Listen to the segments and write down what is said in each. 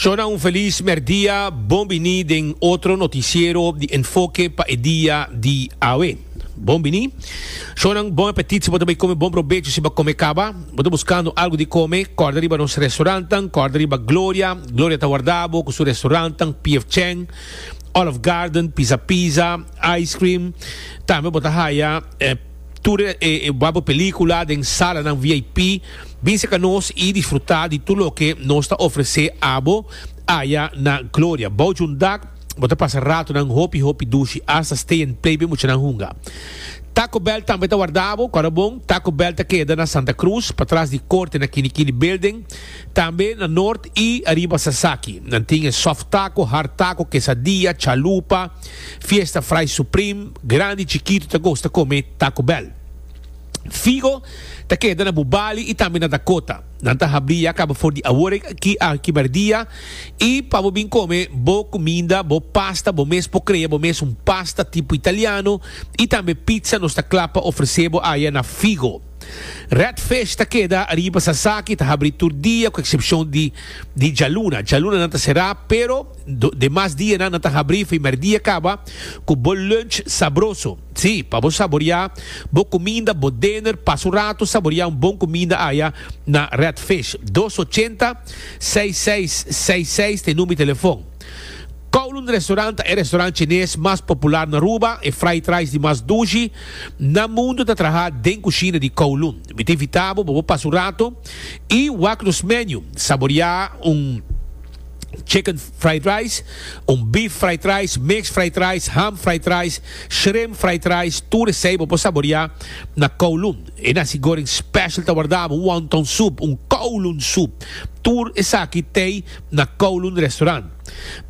Shona un felis merdia, bon bini den otro noticiero di Enfoke pa e dia di awe. Bon bini. Shonan bon apetit si bo ta bay come bon probecho si ba come caba. Bo ta buscando algo di come, corda riba nos restaurantnan, corda riba Gloria, Gloria ta warda bo cu su restaurantnan PF Chang, Olive Garden, Pizza Pizza, Ice Cream, tambe bo ta haya e. Tur e wak pelicula den salanan VIP. Bin seca nos y disfruta di tur loke nos ta ofrece abo aya na Gloria. Bao junt dag, bo ta pasa ratonan hopi hopi dushi, hasta stay and play be muchanan hunga. Taco Bell tambe ta warda bo. Cora bon, Taco Bell ta keda na Santa Cruz, patras di Corte na Kini Kini Building. Tambe na Noord y ariba Sasaki. Nan tin e soft taco, hard taco, quesadilla, chalupa. Fiesta Fry Supreme, grandi chikitu ta gosta kome Taco Bell. Figo ta keda na bu bali i tambe na Dakota. Nan ta habri ya kaba for di awor aki a kiberdia i pa bo bin kome bo kuminda, bo pasta, bo mes por krea bo mes un pasta tipo italiano i tambe pizza nos ta kla pa ofrese bo aya na Figo. Red Fish ta keda riba Sasaki i ta habri tur dia ku eksepshon di di djaluna. Djaluna nan ta será pero. Demas dianan nan ta habrí fimer dia kaba ku bo lunch sabroso. Sí, pa bo saboriá bo kuminda, bo dener, pasa un ratu saboriá un bon kuminda aya na Red Fish. Dos ochenta, seis seis seis seis ta e number di telefòn. Kowloon Restaurant ta e restaurant chines mas popular na Aruba, e fried rice di mas dushi na mundu ta trahá den kushina di Kowloon. Mi ta invitá bo pa bo pasa un ratu i wak nos menu, saboriá un. chicken fried rice, un beef fried rice, mixed fried rice, ham fried rice, shrimp fried rice, tur esei bo por saboreá na Kowloon. E nasi goreng special ta wardá abo wonton soup, un Kowloon soup. Tur esaki t'ei na Kowloon Restaurant.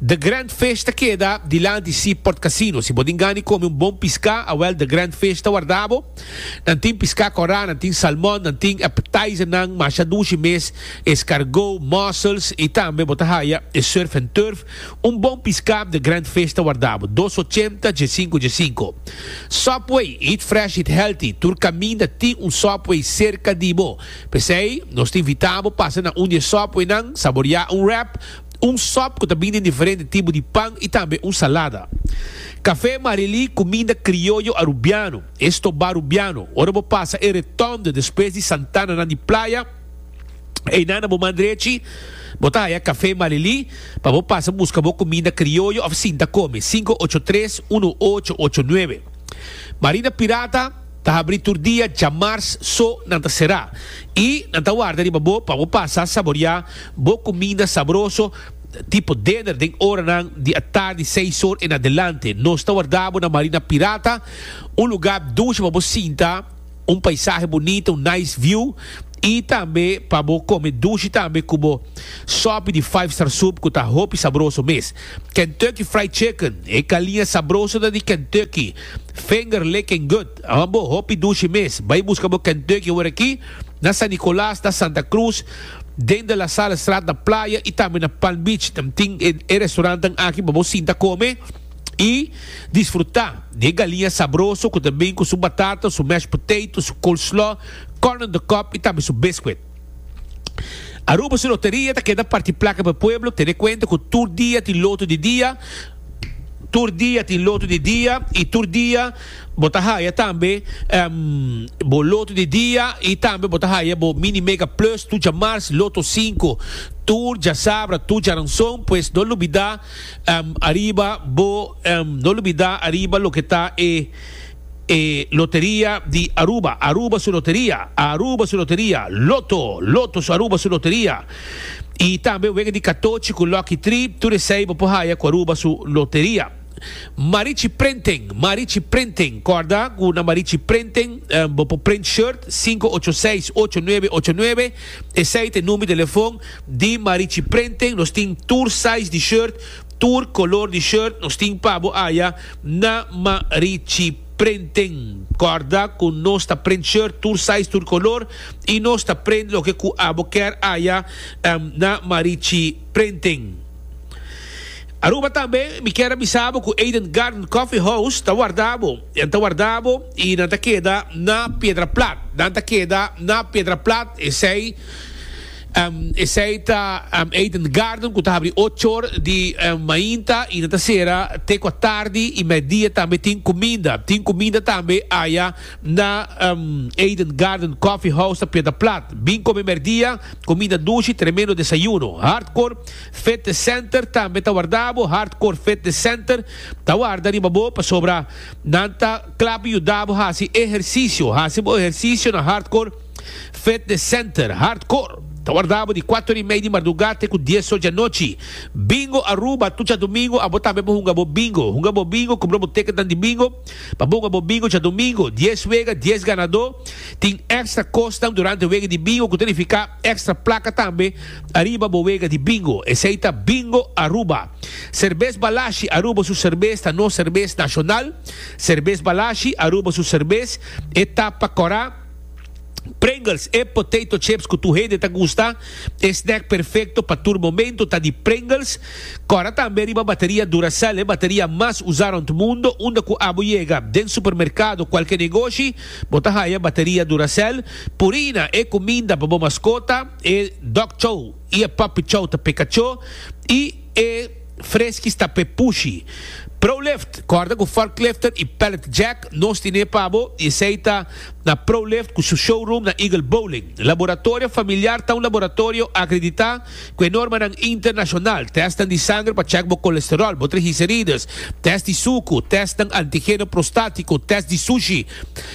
The Grand Fish ta keda dilanti Seaport Casino. Si bo tin gana di kome un bon piská, awèl The Grand Fish ta wardá abo. Nan tin piská korá, nan tin salmon, nan tin appetizernan masha dushi mes, escargot, mussels i tambe bo ta haya e surf en turf, un bon piská den Grand Fish ta wardá bo dos ochenta dje sinku dje sinku. Subway, eat fresh eat healthy, tur kaminda tin un Subway serka di bo, p'esei nos ta invitá bo pasa na un di e Subwaynan, saboriá un wrap, un sop ku ta bin den diferente tipo di pan i tambe un salada. Café Marily, kuminda krioyo arubiano. Esto barubiano, ora bo pasa e retonde despues di Santananan di Playa, einan na bo man drechi bo ta haya Café Malili pa bo pasa busca bo cuminda crioyo of sinta come, sinku ocho tres uno ocho ocho nuebe. Marina Pirata ta habri tur dia djamars so nan ta cera y nan ta warda riba bo pa bo pasa saboria bo cuminda sabroso tipo dinner den oranan di atardi seis or en adelante. Nos ta warda bo na Marina Pirata. Un lugá dushi pa bo sinta, un paisahe bunita, un nice view, i tambe pa bo kome dushi tambe ku bo sòpi di Five Star Soup ku ta hopi sabroso mes. Kentucky Fried Chicken, e kaliña sabroso ta di Kentucky Finger Licking Good, a ban bo hopi dushi mes. Bai buska bo Kentucky awor aki na San Nicolas, na Santa Cruz, den De La Salle Straat na Playa i tambe na Palm Beach. Nan tin e e restaurantenan aki pa bo sinta kome. i disfrutá di e galiña sabroso ku ta bin ku su batata, su mashed potato, su coleslaw, corn on the cob i tambe su biscuit. Aruba su loteria ta keda parti plaka pa e pueblo, tene kuenta ku tur dia tin loto di dia, tur dia tin loto di dia i tur dia bo ta haya tambe bo loto di dia i tambe bo ta haya bo Mini Mega Plus, tu djamars, Lotto Sinku, tur djasabra, tur djaranson, pues no lubidá. Ariba bo no lubida ariba loke ta e e loteria di Aruba, Aruba su loteria, Aruba su loteria, Lotto, Lotto su Aruba su loteria, y tambe wega di katochi ku Lucky Tri, tur esei bo por haya ku Aruba su loteria. Marichi Printing, Marichi Printing, korda ku na Marichi Printing bo por print shirt, sinku ocho seis ocho nuebe ocho nuebe. Esei ta e number di telefon di Marichi Printing, nos tin tur size di shirt, tur color di shirt nos tin pa bo aya na Marichi Printing. Corda cu nos ta print shirt tur size, tur color y nos ta print loke cu abo ker aya na Marichi Printing. Aruba tambe mi kier a bisa bo cu Eden Garden Coffee House ta warda bo. Nan ta warda bo i nan ta keda na piedra plat. Nan ta keda na piedra plat, esei, esei ta Eden Garden ku ta habri ocho or di mainta i nan ta sera te kua tardi i meidia tambe tin kuminda. Tin kuminda tambe aya na Eden Garden Coffee House ta Piedra Plat. Bin kome merdia, kuminda dushi, tremendo desayuno. Hardcore Fitness Center tambe ta warda bo, Hardcore Fitness Center Ta warda riba bo pasobra nan ta kla pa yuda bo hasi ehersisio. Hasi bo ehersisio na Hardcore Fitness Center. Hardcore ta warda bo di kuato ora i mei di mardugá te ku dies ora di anochi. Bingo Aruba tur djadumingu abo tambe por hunga bo bingo. Hunga bo bingo, kumpra bo tekenan di bingo pa bo hunga bo bingo djadumingu. Dies wega, dies ganadó. Tin èkstra kosnan durante wega di bingo ku ta nifiká èkstra plaka tambe ariba bo wega di bingo. Esei ta Bingo Aruba. Serbes Balashi Aruba su serbes ta nos serbes nashonal. Serbes Balashi Aruba su serbes e ta pa kora. Pringles E potato chips ku tur hende ta gusta. E snack perfekto pa tur momentu ta di Pringles. Kora tambe riba bateria Duracell, e bateria mas usa rond mundo. Unda ku abo yega, den supermerkado, kualke negoshi, bo ta haya bateria Duracell. Purina E kuminda pa bo maskota, e dog chow. i e papi chou ta pe kachó i e freskis ta pe pushi. Prolift, kòrda ku forklifter i pallet jack nos tine pa bo i esei ta na Prolift ku su showroom na Eagle Bowling. Laboratorio Familiar ta un laboratorio akreditá ku e normanan internashonal, tèstnan di sanger pa chèk bo kolesteròl, bo trigiserides, tèst di suku, tèstnan antigeno prostátiko, tèst di sushi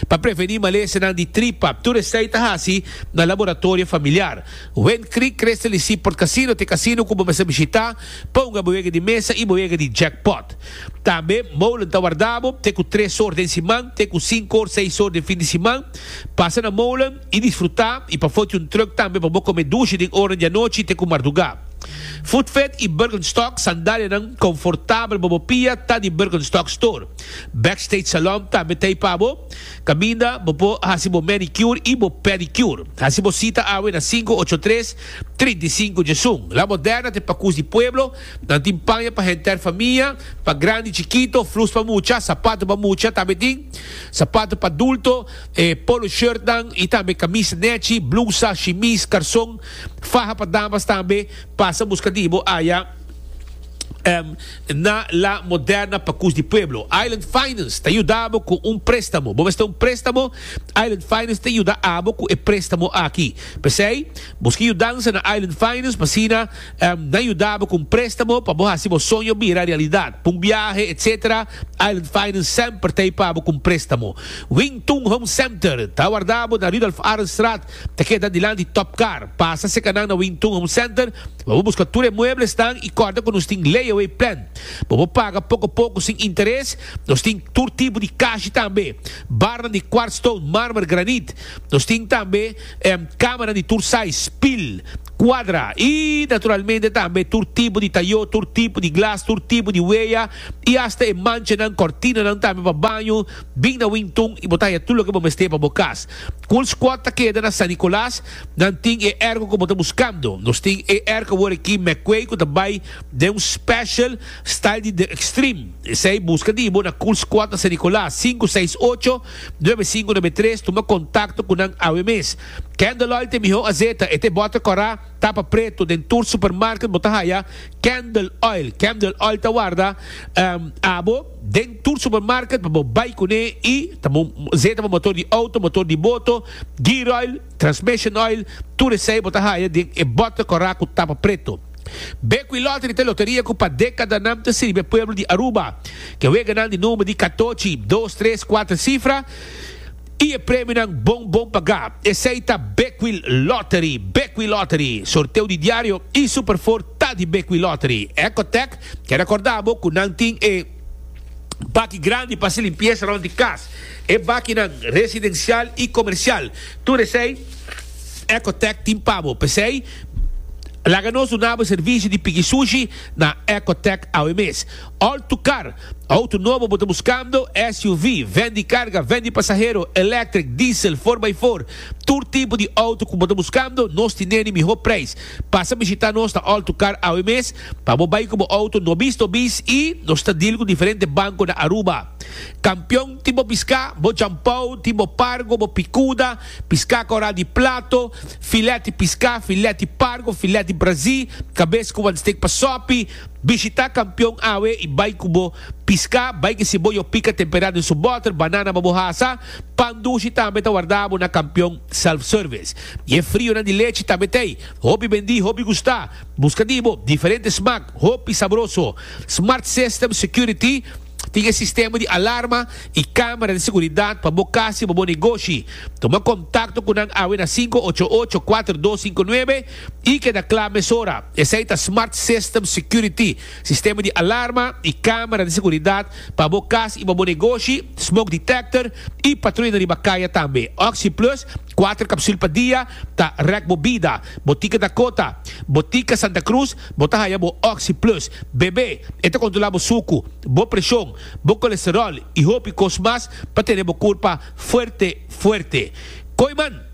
pa prevení malesanan di tripa, tur esei ta hasi na Laboratorio Familiar. Wen Creek Crystal y Seaport Casino t'e casino cu bo mester bishita pa hunga bo wega di mesa y bo wega di jackpot. Tambe Molen ta warda bo te cu tres or den siman te cu cinco or seis or den fin di siman. Pasa na Molen y disfruta y pa foti un truck tambe pa bo come dushi den oranan di anochi te cu marduga. Footfed y Birkenstock sandalianan confortabel pa bo pia ta di Birkenstock Store. Backstage Salon tambe t'ey pa bo. Caminda, bo por haci bo manicure y bo pedicure. Haci bo cita awe na cinco ocho tres, trinta y cinco Jesun. La Moderna t'e pacus di pueblo. Nan tin paña pa henter famia, pa grandi, chikito, flus pa mucha, sapato pa mucha, tambe tin sapato pa adulto, e polo shirtnan y tambe camisa nechi, blusa, shimis, carson, faha pa damas tambe. Pasa busca di bo aya. Na La Moderna pa Cus di Pueblo, Island Finance ta yuda bo cu un prestamo. Bo mester un prestamo? Island Finance ta yuda abo cu e prestamo aki. P'esey, busca yudansa na Island Finance pa asina nan yuda bo cu un prestamo pa bo haci bo soño bira realidad. Pa un biahe, etc. Island Finance semper ta ey pa bo cu un prestamo. Wing Tung Home Center ta warda bo na Rudolph Arendstraat. Ta keda dilanti di Top Car. Pasa cerca nan na Wing Tun Home Center, bobo busca tur e mueblesnan y corda cu nos tin layaway plan. Bobo paga poco poco sin interes. Nos tin tur tipo di cashi tambe. Barnan di quartz stone, marmer, granit. Nos tin tambe camanan di tur size, pil, cuadra y naturalmente tambe tur tipo di tayo, tur tipo di glas, tur tipo di weya y hasta e manchanan, cortinanan tambe pa baño. Bin na Wington i bo ta haña tur loke bo mester pa bo kas. Cool Squad ta keda na San Nicolas. Nan tin e ergo ku bo ta buskando. Nos tin e ergo awor aki McQuay ku ta bai den un special style di The Extreme. Esei buska di bo na Cool Squad na San Nicolas, sinku seis ocho, nuebe sinku nuebe tres. Tuma kontakto ku nan awe mes. Candlelight e mihó azeta. E ta e bòter kòrá, tapa pretu. Den tur supermarket bo ta haya Candle Oil. Candle Oil ta warda abo. Den tur supermarket pa bo bai kuné i ta bo zeta bo motor di outo, motor di boto, gear oil, transmission oil, tur esei bo ta haya den e bòter kòrá ku tapa preto. Bekwí Lottery ta e loteria ku pa dékada nan ta sirbi e pueblo di Aruba. Ke weganan di number di katochi, dos, tres, kuater sifra. Y e premionan bon bon pagá. Esei ta Bekwil Lottery, Bekwil Lottery, sorteo di diario y Super Four ta di Bekwil Lottery. Ecotec ke recorda bo cu nan tin e baki grandi pa haci limpieza rond di cas. E bakinan residencial y comercial. Tur esei Ecotec tin pa bo. P'esei laga nos duna bo e servicio di pigi sushi na Ecotec awe mes. All to Car, Auto nobo bo ta buskando? SUV, ven di karga, ven di pasahero, electric, diesel, for by four, tur tipo di auto ku bo ta buskando, nos tin neni mihó preis. Pasa bishitá nos na Alto Car awe mes pa bo bai ku bo auto nobis nobis i nos ta deal ku diferente banko na Aruba. Kampion tin bo piská, bo jampou, tin bo pargo, bo pikuda, piská kòrá di plato, filèt di piská, filèt di pargo, filèt di brazí, kabes ku wan stik pa sòpi, Bishita kampion awe i bai ku bo piska. Bai kisi bo yo pika temperá den su bòter, banana pa bo hasa. Pan dushi tambe ta warda bo na kampion self-service. I e frionan di lechi tambe ta ei. Hopi bendí, hopi gustá. Buska di bo diferente smak, hopi sabroso. Smart System Security tin e sistema di alarma i kámara di seguridat pa bo kas i pa bo negoshi. Tuma kontakto ku nan awe na sinku ocho ocho, kuater dos sinku nuebe. I keda kla mesora, esei ta Smart System Security, sistema di alarma i kamera di seguridat pa bo kas i pa bo negoshi, smoke detector i patruyanan riba kaya tambe. OxyPlus, kuater kapsul pa dia, ta rèk bo bida. Botika Dakota, Botika Santa Cruz, bo ta haya bo OxyPlus. Bebe, e ta kontrolá bo suku, bo preshon, bo kolesteròl i hopi kos mas pa tene bo kurpa fuerte fuerte. Koiman!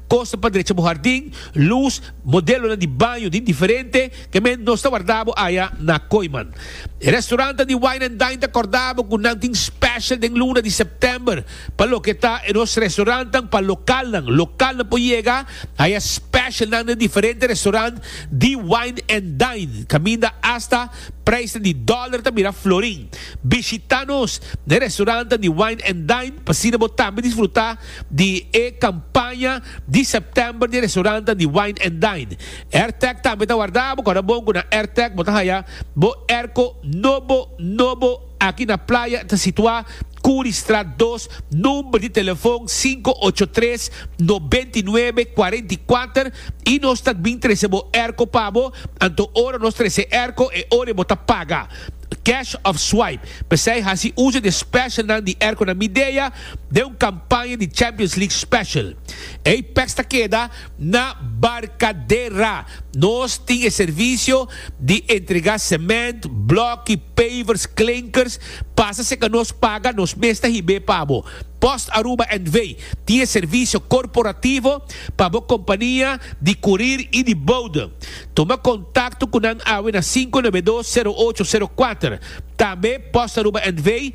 Kosa pa drecha bo hardin, lus, modelonan di baño di diferente, ke men nos ta warda bo aya na Koiman. E restaurantan di Wine and Dine ta korda bo ku nan tin special den luna di September pa loke ta e nos restaurantan pa lokalnan. Lokalnan por yega aya specialnan den diferente restaurant di Wine and Dine, kaminda asta preisnan di dollar ta mira florin. Bishita nos na e restaurantan di Wine and Dine pa asina bo tambe disfruta di e kampaña di September di restorannan di Wine and Dine. Airtag tambe ta warda bo. Kòrda bon ku na Airtag bo ta haya bo airco nobo nobo aki na playa. E ta situá Curriestraat dos, number di telefon sinku ocho tres, noventa i nuebe, kuarenta i kuater i nos ta bin trese bo airco pa bo. Anto ora nos trese e airco e ora bo ta paga, cash of swipe. P'esei hasi uso di e specialnan di airconan Midea. den un kampaña di Champions League Special. Ei peks ta keda na Barcadera. Nos tin e servisio di entregá sement, blòki, pavers, klinkers. Pasa serka nos paga, nos mes ta hib'é pa bo. Post Aruba NV. tin e servisio korporativo pa bo kompania di kurir i di boude. Tuma kontakto ku nan awe na sinku nebe dos sero ocho sero kuater. Tambe Post Aruba NV.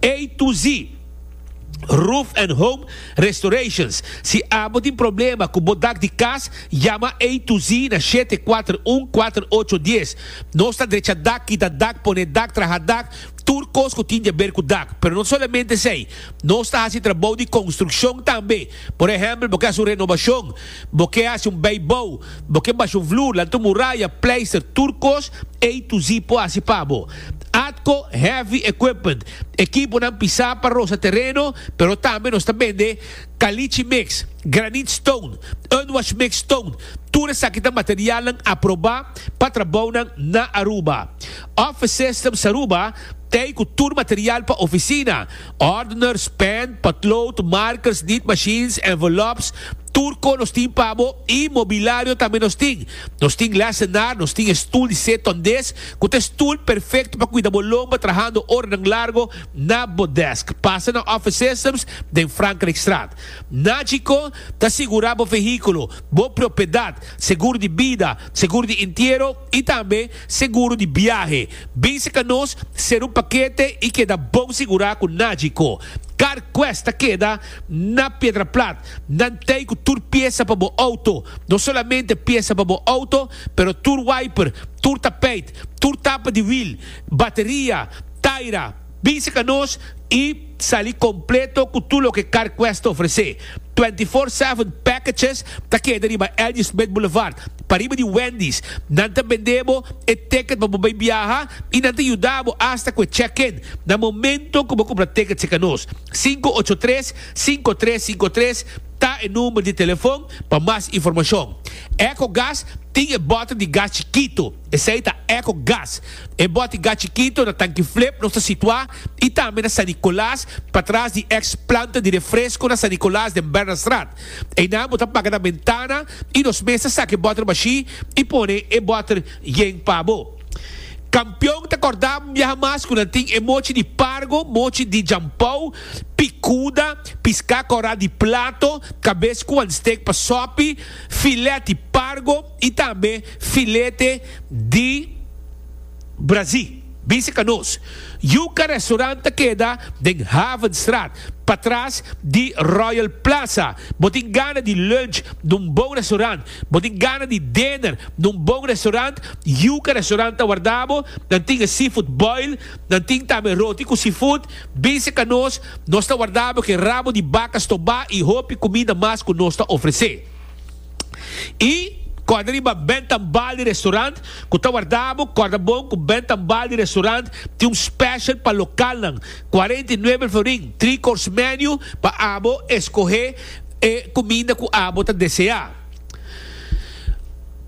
Ey tu zi Roof and Home Restorations. Si abo tin problema cu bo dak di cas, yama Ey tu zi na shete kuater un kuater ocho dies. Nos ta drecha dak, kita dak, pone dak, traha dak, tur cos cu tin di haber cu dak. Pero no solamente esey, nos ta haci trabou di construccion tambe. Por ehempel bo ke haci un renobacion. Bo ke hasi un bay bou, bo ke basha un vloer, lanta un muraya, pleister, tur kos, A-Z por hasi pa bo. Atco Heavy Equipment, ekiponan pisá pa rosa tereno, pero tambe nos ta bende Caliche Mix, Granite Stone, Unwash Mix Stone, tur esaki ta materialnan aprobá pa trabounan na Aruba. Office Systems Aruba ta ei ku tur material pa oficina, Ordeners, pen, potlood, markers, niet machines, envelopes, tur ko nos tin pa bo i mobilario tambe nos tin. Nos tin lesenar, nos tin e stul di se tondes ku ta e stul perfekto pa kuida bo lomba trahando oranan largo na bo desk. Pasa na Office Systems den Frankrijkstraat. Na Chicó ta sigurá bo vehíkulo, bo propiedat, segur di bida, segur di intiero, i tambe seguro di biahe. Bin seka nos, sera un pakete i keda bon sigurá ku nadje ko. CarQuest ta keda na Piedraplat. Nan tei ku tur piesa pa bo outo. No solamente piesa pa bo outo, pero tur wiper, tur tapeit, tur tapa di wil, bateria, taira, Bísica nos y sali completo cu tur loke Car Quest ta ofrece. Twenty Four Seven Packages ta keda riba L.G. Smith Boulevard, pariba di Wendy's. Nan ta bende bo e ticket pa bo bay biaha y nan ta yuda bo hasta cu e check-in na momento cu bo cumpra ticket cerca nos. Cinco ocho tres, cinco tres cinco tres ta e number di telefon pa mas informacion. Ecogas tin e bottle di gas chikito. Esei ta Echo Gas. E boti gas chikito na tanki flip nos ta situá i tambe na San Nicolas, patras di ex planta di refresco na San Nicolas den Bernardstraat. Einan bo ta paga nan bentana i nos mes ta saki e bòter bashí i pone e bòter yen pa bo. Kampion ta kòrdá un biaha mas ku nan tin e mochi di pargo, mochi di jampou, pikuda, piská kòrá di plato, kabes ku wan stek pa sòpi, filèt di pargo, y tambe filete di brazi, bici canoes. Yuca restaurant ta keda den Havenstraat, patras di Royal Plaza. Bo tin gana di lunch na un bon restaurant, bo tin gana di dinner na un bon restaurant, Yuca restaurant ta warda bo. Nan tin e seafood boil, nan tin tambe roti cu seafood. Bici canoes, nos ta warda bo cu e rabo di baca stobá y hopi cuminda mas cu nos ta ofrece. I kòrda riba bènt an bal di restaurant ku ta warda bo, kòrda bon ku bènt an bal di restaurant tin un special pa lokalnan, cuarenta y nueve el florin, three course menu pa abo eskohé e kuminda ku abo ta deseá.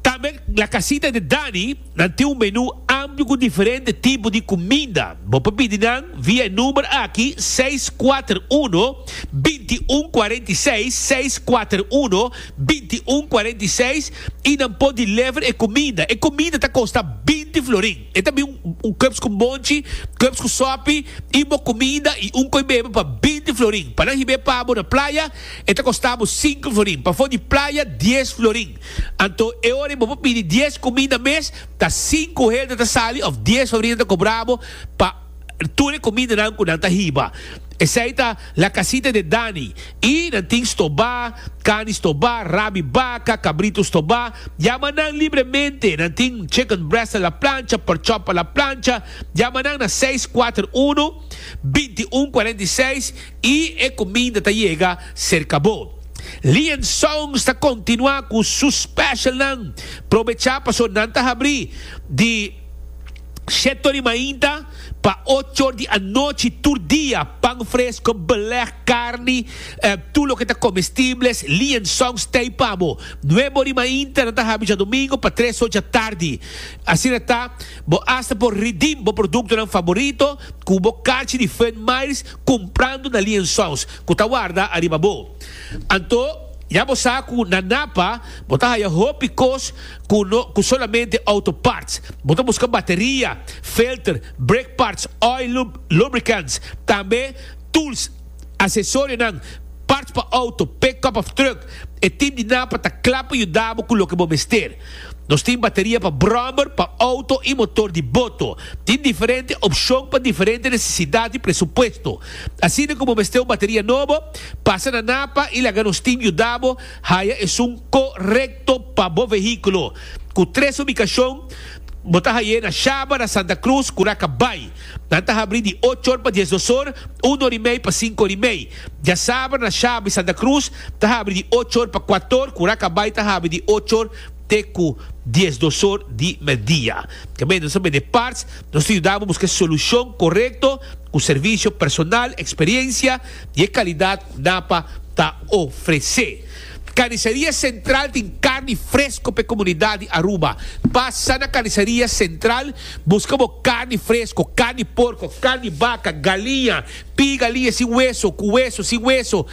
Tambe La Casita de Dani. Nan tin un menú amplio ku diferente tipo di kuminda. Bo por pidi nan via e number aki seis kuater uno, binti un kuarenta i seis, seis kuater uno, binti un kuarenta i seis, i nan por deliver e kuminda. E kuminda ta kosta binti florin. E ta bin un kèps ku monchi, kèps ku sòpi, i bo kuminda i un koi bebe pa binti florin. Pa nan hib'é pa bo na playa, e ta kosta bo sinku florin. Pafó di playa, dies florin. Anto e ora bo por pidi dies cuminda mes ta sinku hende ta sali of dies sobrina ta cobra bo pa tur e cumindanan cu nan ta hiba. Esey ta La Casita de Dani y nan tin stobá, cani stobá, rabi baca, cabrito stobá, yama nan libremente, nan tin chicken breast a la plancha, pork chop a la plancha, yama nan na seis kuater unu, binti un kuarenta i seis. I e cuminda ta yega cerca bo. Lian Songs ta continua cu su specialnan. Probecha paso nan ta habri di shetto di mainta pa ochor di anochi tur dia, pan fresco, beleg, carni, tur loke ta comestibles. Lian Songs t'ey pa bo. Nuebo di mainta nan ta habi djadomingo pa tres or djatardi. Asina ta bo hasta por redeem bo productonan favorito cu bo carchi di Fun Miles Kumprando na liensols ku ta warda ariba bo. Anto, ya bo sa ku na Napa bo ta haya hopi kos ku no ku solamente outo parts. Bo ta buska bateria, filter, brake parts, oil, lube, lubricants, tambe tools, asesorionan, parts pa outo, pickup of truck. E tim di Napa ta kla pa yuda bo ku loke bo mester. Nos tin bateria pa brommer, pa auto y motor di boto. Tin diferente opcion pa diferente necesidad y presupuesto. Asina cu bo mester un bateria nobo, pasa na Napa y laga nos tin yuda bo haya esun co-recto pa bo vehiculo. Cu tres ubicacion bo ta haye na Shabara, Santa Cruz, Curaca Bay. Nan ta habri di ocho or pa diesdos or, un or y mey pa cinco or y mey. Diasaber na Shaba y Santa Cruz ta habri di ocho or pa kuator ku Rakabai ta habri di ocho or te ku dies dosor di medidia. Kemey nos a bende parts, nos ta yuda bo buska e solushon korekto ku servisio personal, eksperiensia i e kalidat ku NAPA ta ofresé. Karniseria Sentral tin karni fresko pa e komunidat di Aruba. Pasa na Karniseria Sentral buska bo karni fresko, karni porko, karni baka, galiña, Piga lie sin weso cu weso sin weso,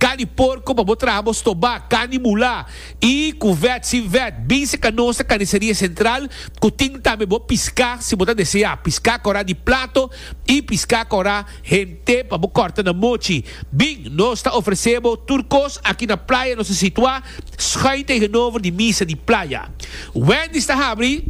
cani porco pa bo traha bo stoba, cani mula, y cu vet sin vet. Binse ca nos ta Carniceria Central cu tin tambe bo pisca si bo ta desea, pisca cora di plato y pisca cora hente pa bo corta na mochi. Bin, nos ta ofrece bo tur cos aki na playa nos ta situa schuin tegenover di misa di playa. Wendy's ta habri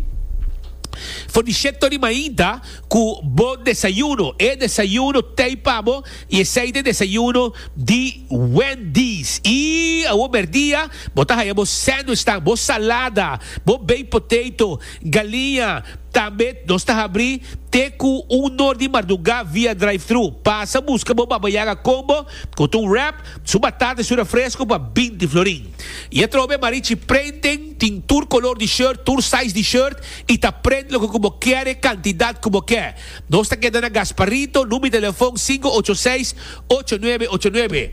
for di shek tori mainta. Cu bo desayuno, e desayuno tey pa bo y esey ta e desayuno di Wendy's. Y awo merdia bo ta haya bo sandwichnan, bo salada, bo baked potato, galiña. Tambe nos ta habri te cu un nor di marduga via drive-thru. Pasa busca bo Baba Yaga Combo cu ta un wrap, su batata y su refresco pa binti florin. Y atrobe Marichi Printing tin tur color di shirt, tur size di shirt. y ta pret loke cu bo kier e cantidad cu bo kier. Nos ta keda na Gasparito, numi telefon sinku ocho seis, ocho nuebe ocho nuebe.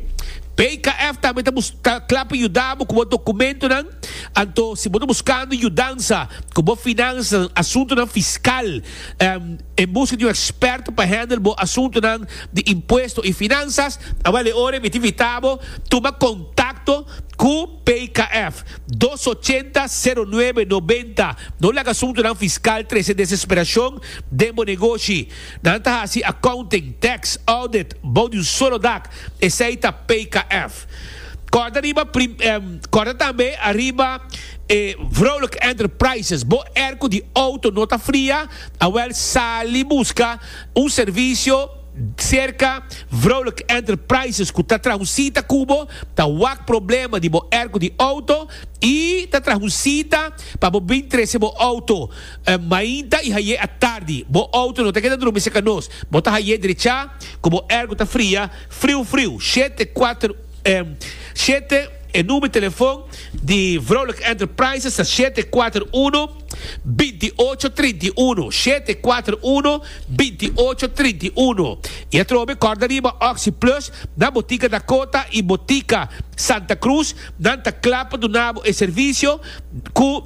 PKF tambe ta bus ta cla pa yuda bo cu bo documentonan, anto si bo ta buscando yudansa cu bo finansanan, asuntonan fiscal, em en busca di un experto pa handle bo asuntonan di impuesto y finansas, a bale ora e miti vita bo, tuma contacto cu. PIKF, dos ochenta, sero nuebe, nobenta, No laga suntunan fiskal trese desesperashon den bo negoshi. Nan ta hasi accounting, tax, audit, bou di un solo dak. Esei ta PIKF. Kòrda riba prim, em, kòrda tambe ariba e Vrolijk Enterprises. Bo airco di outo no ta fria? Awèl sali buska un servisio. Serka vrouwelijke enterprises cu ta trahu cita cu bo ta wak problema di bo erco di auto y ta trahu cita pa bo bin trece bo auto mainta y haye atardi. Bo auto no ta keda drumi cerca nos. Bo ta haye drecha cu bo erco ta fria friu friu. Shete cuater Shete E number telefon di vrouwelijke enterprises ta shete cuater uno binti ocho trinta y uno. Shete cuater uno. binti ocho trinta i unu. I atrobe e kòrda riba Oxi Plus na Botika Dakota i Botika Santa Cruz nan ta kla pa duna bo e servisio ku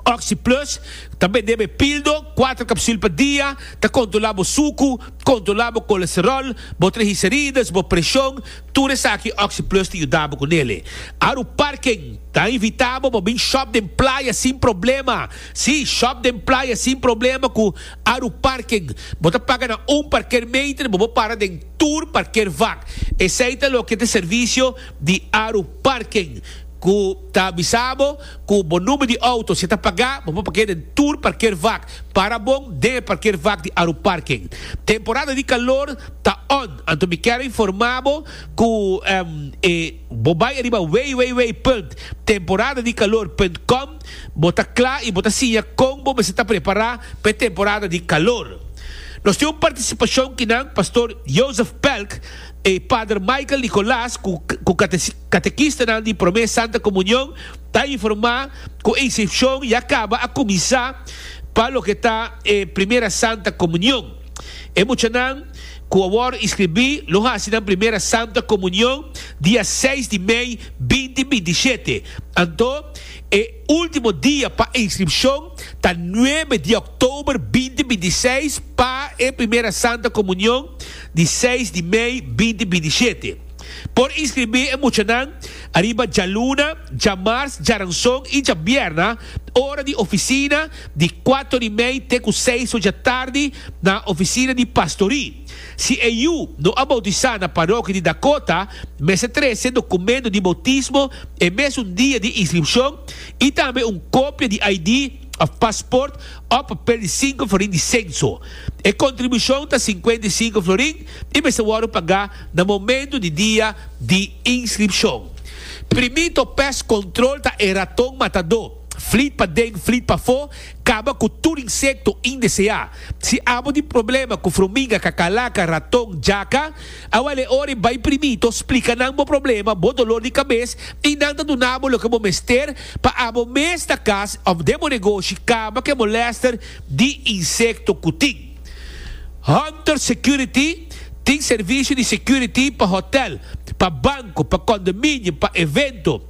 Oxi Plus ta bendeba e pildo, kuater kapsul pa dia, ta kontrolá bo suku, kontrolá bo kolesteròl, bo trehicerides, bo preshon, tur esaki Oxi Plus ta yuda bo ku nele. Aru Parken ta invitá bo pa bin shòp den playa sin problema. Sí, shòp den playa sin problema ku aru parking. Bo ta paga na un parkeermeter i bo por para den tur parkeervak. Esei ta loke ta e servisio di aru parking, ku ta bisa bo ku bo number di outo. Si e ta pagá, bo por pak'é den tur parkeervak. Para bon den e parkeervak di aru parking. Temporada di kalor ta on, anto mi kèra informá bo ku e bo bai ariba www.temporadadikalor.com. Bo ta kla i bo ta siña kon bo mester ta prepará pa e temporada di kalor. Nos tin un partisipashon kinan Pastor Joseph Pelk i Pader Michael Nicolas ku katekistanan di Promé Santa Komunion ta informá ku insripshon ya kaba a kuminsá pa loke ta e Primera Santa Komunion. E muchanan ku a wòrdu inskribí lo hasi nan Primera Santa Komunion dia seis di mei binti binti shete, anto E ultimo dia pa inscripcion ta nuebe di oktober binti binti i seis pa e Primera Santa Comunion di seis di mei binti binti i shete. Por inscribi e muchanan riba djaluna, djamars, djaranson i djambierna ora di oficina di cuato di mei te cu seis ocha tardi na oficina di Pastorie. Si e yu no a boutisá na parokia di Dakota, mester trese dokumento di boutismo e mesun dia di inskripshon i tambe un kopia di ID òf pasport òf papel di sinku florin di senso. E kontribushon ta sinkuenta i sinku florin i mester wòrdu pagá na momentu di dia di inskripshon. Primito pes kontrol ta e raton matadó. Flit pa den, flit pafó, kaba ku tur insekto indeseá. Si abo tin problema ku fruminga, kakalaka, raton, jaka, a wale e ora i bai primito splika nan bo problema, bo dolor di kabes i nan ta duna bo loke bo mester pa abo mes na kas òf den bo negoshi kaba ku e molèster di insekto ku tin. Hunter Security tin servisio di security pa hotèl, pa banko, pa kondominio, pa evento.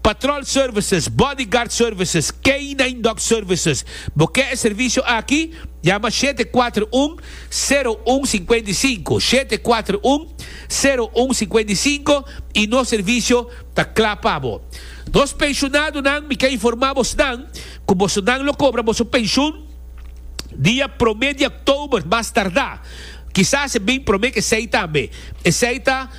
Patrol Services, Bodyguard Services, Canine Dog Services. Bo ke e servisio aki? Yama shete kuater un, sero un sikuenta i sinku, shete kuater un, sero un sikuenta i sinku, i nos servisio ta kla pa bo. Nos penshunadonan mi ke informa bosnan ku bosonan lo kobra boso penshun dia prome di òktober mas tardá, kisas e bin prome ke esei tambe. Esei ta.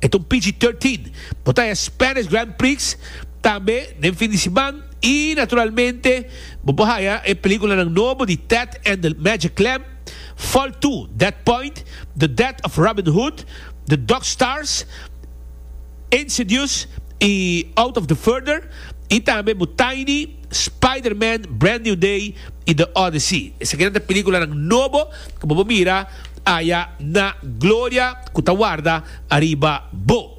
E ta un pg thirteen. Bo ta e Spanish Grand Prix tambe den fin di siman y naturalmente bo por haya e peliculanan nobo di Ted and the Magic Clam, Fall Two, Dead Point, The Death of Robin Hood, The Dog Stars, Insidious y Out of the Further y tambe bo Tiny, Spider-Man, Brand New Day y The Odyssey. Esakinan ta peliculanan nobo. ku bo por bira aya na gloria ku ta warda ariba bo.